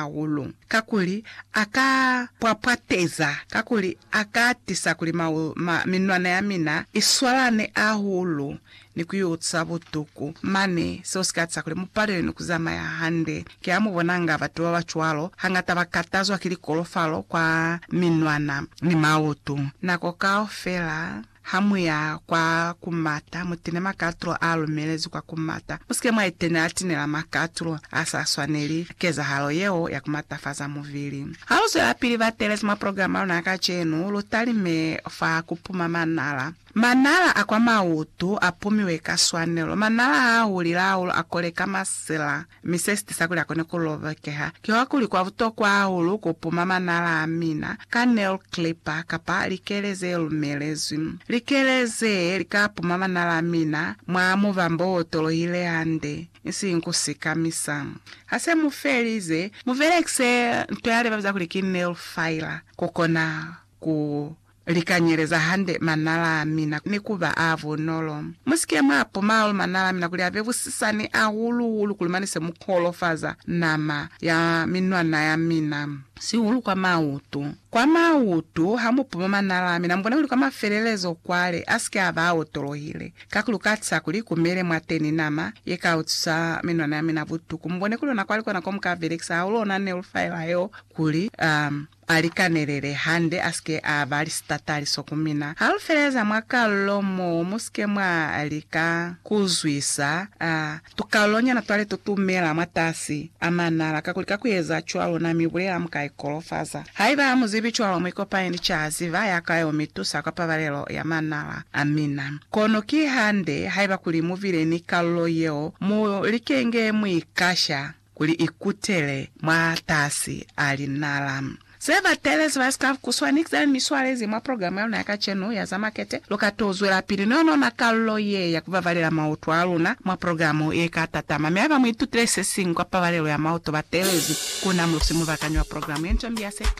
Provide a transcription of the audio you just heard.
hahulu, kakuli a ka pwapwateza, kakuli a ka tisa kuli minwana ya mina i swalane hahulu ni ku yo ca butuku. Mane, seo si ka tisa kuli mu palelwe ni ku zamaya hande. Ki ha mu bonanga batu ba ba cwalo, hangata ba katazwa ki likolofalo kwa minwana ni mautu nako kaufela. Ha mu ya kwa ku mata, mu tine makatulo a lumelezi kwa ku mata. Mu si ke mwa itenela tinela makatulo a sa swaneli kezahalo yeo ya ku matafaza mubili. Ha lu zwelapili ba telezi mwa programa ya luna ya kacenu, lu talime fa ku puma manala. Manala a kwa mautu a pumiwe ka swanelo. Manala ha a hulile hahulu a koleka masila. Mi se si tisa kuli a kone ku lobekeha kiwa kuli kwa butokwa hahulu ku puma manala a mina ka nail clipper kapa likele ze lumelezwi. Likele ze li ka puma manala a mina mwa mubambo o tolohile hande, isiñi ku sikamisa. Ha se mu felize, mu belekise nto ya libabiza kuli ki nail filer ku kona ku Li kanyeleza hande manala a mina ni ku ba a bunolo. Mu si ke mwa puma hahulu manala a mina kuli a be busisani, hahulu-hulu kuli mane se mu kolofaza nama ya minwana ya mina, sihulu kwa mautu. Kwa mautu, ha mu puma manala a mina, mu bone kuli kwa mafelelezo kwale a si ke a ba a otolohile, kakuli lu ka tiza kuli ku mele mwateni nama ye ka utwisa minwana ya mina butuku. Mu bone kuli ona kwali kona ko mu ka belekisa hahulu ona nelu faela yeo kuli, um, A li kanelele hande a si ke a ba li sitataliso ku mina. Ha lu feleza mwa kalulo mo mu si ke mwa lika ku zwisa a tukalulonyana twa leto tu mela mwatasi a manala, kakuli ka ku eza cwalo na mi bulela mu ka ikolofaza. Haiba ha mu zibi cwalo, mu ikopanye ni cazi ba ya ka yo mi tusa kwa pabalelo ya manala a mina. Kono ki hande, haiba kuli mu bile ni kalulo yeo, mu likenge mu i kasha. kuli i kutele mwatasi a linala. Ze batelezi ba scarf ku swa ni ze mi swalezi mwa program ya luna ya kacenu ya za makete, lu ka to zwelapili ni ona kalulo ye ya ku babalela mauto a luna mwa program ye ka tatama. Mi haiba mu itutile se siñwi kwa pabalelo ya mauto, batelezi ku na mu si mu bakanywa program ye nca mi ya se ka.